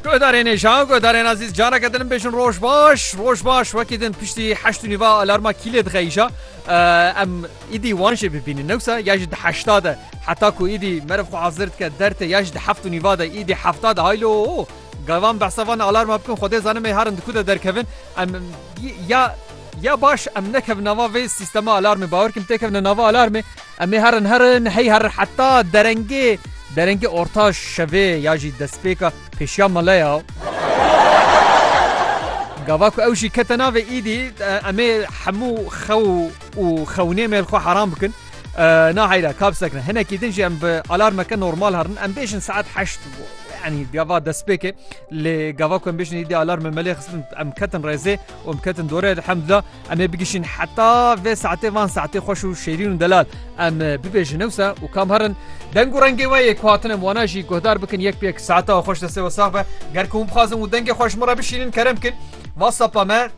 Guhdarên êşan, guhdarên azîz careke din bêjin roj baş, roj baş wekî din piştî heşt nîva alarma kîlê dixeyîşa em îdî wan jê bibînin newsa ya ji di heşta de heta ku îdî meriv xwe hazir dike dertê ya ji di heft û nîva de îdî hefta de haylo gavan behsa van alarma bikin xwedê zanim ê herin di ku de derkevin em ya Ya baş em nekevin nava vê sîstema alarmê bawer kim têkevine nava alarmê em ê herin herin hey herin heta derengê derengê orta şevê ya jî destpêka pêşiya mele ya. Gava ku ew jî kete navê îdî em ê hemû xew û xewnê me li xwe heram bikin. Na heyra kap sekne hinekî din jî em bi alarmeke normal herin em bêjin saet heşt yanî gava destpêkê lê gava ku em bêjin îdî alarmê melê xistin em ketin rêzê Wan biketin dore elhamdullah em ê bigişîn heta vê saetê van saetê xweş û şêrîn û delal em bibêjin ewsa û kam herin deng û rengê we yê ku hatine wana jî guhdar bikin yek pêk saeta xweş destê we sax be ger ku hûn bixwazin û dengê xweş min re bişînin kerem bikin whatsapp me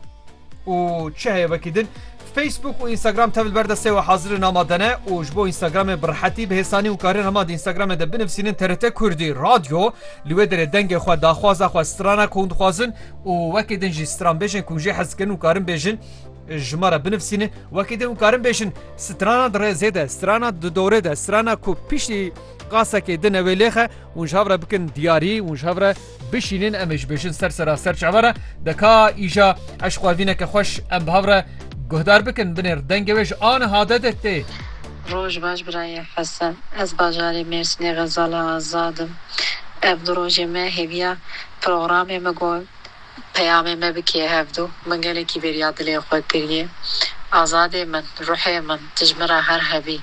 û çi heye wekî din Facebook û Instagram tevil ber destê we hazirê nama dene û ji bo Instagramê bi rehetî bi hêsanî û karin hema di Instagramê de binivîsînin TRT Kurdî radyo li wê derê dengê xwe daxwaza xwe strana ku hûn dixwazin û wekî din jî stranbêjên ku jê hez dikin û karin bêjin ji me re binivîsînin wekî din û karin bêjin strana di rêzê de strana di dorê de strana ku piştî qasekê din ewê lêxe û ji hev re bikin diyarî û ji hev re bişînin em ê ji bêjin ser sera ser çaver e deka îja eş xwevîneke xweş em bi hev re guhdar bikin binêr dengê wê ji aniha de de tê. Roj baş birayê Hesen. Ez bajarê Mêrsînê Xezala Azad im. Ev du rojê me hêviya Programê me got, Peyamê me bi kê hevdu, min gelekî bêriya dilê xwe kiriye. Azadê min, ruhê min, dijmin re her hevî.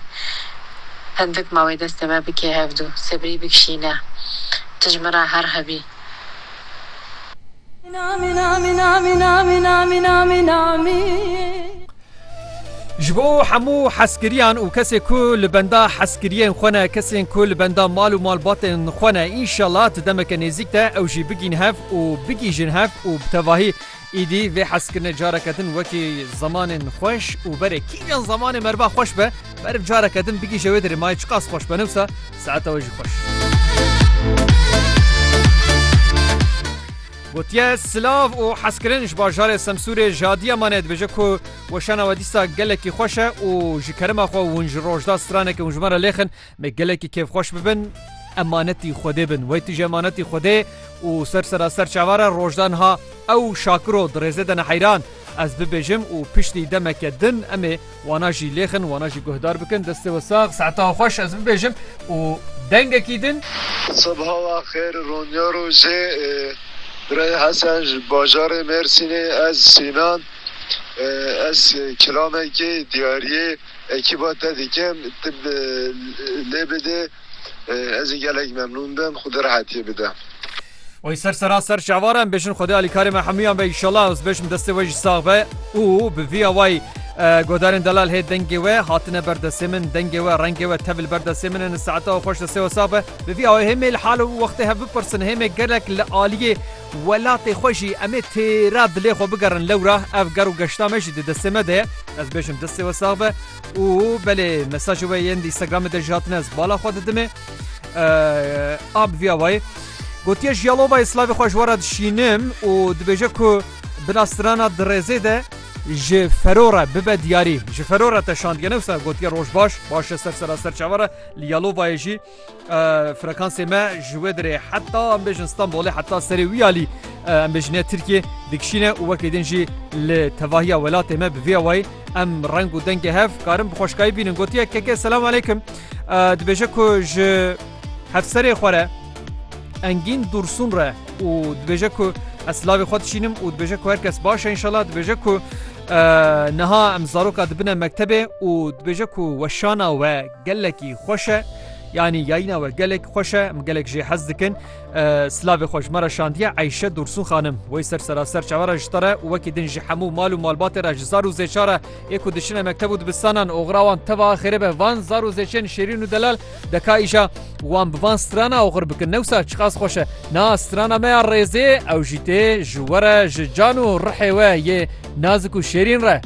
Hindik mawê destê me bi kê hevdu, sebrî bikişîne, dijmin re her hevî. Ji bo hemû hezkiriyan û kesê ku li benda hezkiriyên xwe ne, kesên ku li benda mal û malbatên xwe ne, înşallah di demeke nêzîk de ew jî bigîn hev û bigîjin hev û bi tevahî îdî vê hezkirine careke din wekî zemanên xweş û berê kîjan zemanê meriva xweş be, meriv careke din bigîje wê derê mayê çiqas xweş be newsa saeta we jî xweş. Gotiye silav û hezkirin ji bajarê Semsûrê ji adiya mane dibêje ku weşana we dîsa gelekî xweş e û ji kerema xwe hûn ji rojda straneke hûn ji me re lêxin me gelekî kêfxweş bibin emanetî Xwedê bin. Wey tu ji emanetî Xwedê û ser sera ser çavan re rojda niha ew şakiro di rêzê de ne heyran ez bibêjim û piştî demeke din em ê Wana jî lêxin, wana jî guhdar bikin. Destê we sax, saeta we xweş ez bibêjim û dengekî din. Sibha we xêr, Ronya rojê. Birayê Hesen ji bajarê Mêrsînê, ez Sînan. Ez kilamekê diyariyê ekîba te dikim, tu lê bidê. Ez ê gelek memnûn bim. Xwedê rehetiyê bide. Wey ser sera ser şevare em bêjin Xwedê alî karê me hemûyan be îşallah ez bêjim destê we jî sax be û bi vî awayî Godarên delal hê dengê we hatine ber destê min dengê we rengê we tevî li ber destê min e ni saeta we xweş destê we sax be bi vî awayî hêmê li hal û wextê hev bipirsin hêmê gelek li aliyê welatê xwe jî em ê têra dilê xwe bigerin lewra ev ger û geşta me jî di destê me de ye ez bêjim destê we sax be Û belê mesajê we yên Instagramê de jî hatine ez bala xwe didimê ab viya wayê gotiye ji yalovayê slavê xwe ji we re dişînim û dibêje ku binastirana dirêzê de ji ferora bibe diyarî ji ferora te şandgene wisa gotiye roj baş baş ser sera ser çavara li yalovayê jî Frekansê me ji wê dirê heta em bêjin Stenbolê heta serê wî alî em bêjine Tirkiye dikişîne û wekî din jî li tevahiya welatê me bi vê awayî em reng û dengê hev karin bi xweşkayî bînin gotiye keke selam aleykim dibêje ku ji hevserê xwe re engîn dûrsûn re û dibêje ku ez slavê xwe dişînim û dibêje ku herkes baş e inşallah dibêje ku niha em zaroka dibine mektebê û dibêje ku weşana we Gelekî xweş e yanî yayîna we gelek xweş e em gelek jê hez dikin silavê xwe ji me re şandiye Eyşe Dursûn xanim wey ser seraser çawe re ji te re û wekî din ji hemû mal û malbatê re ji zar û zêça re yê ku diçine mekteb û dibistanan oxira wan teva xêrê be van zar û zêçên şêrîn û delal deka îja wan bi van strana oxir bikin newsa çiqas xweş e na strana me ya rêzê ew jî tê ji we re ji can û rihê we yê nazik û şêrîn re.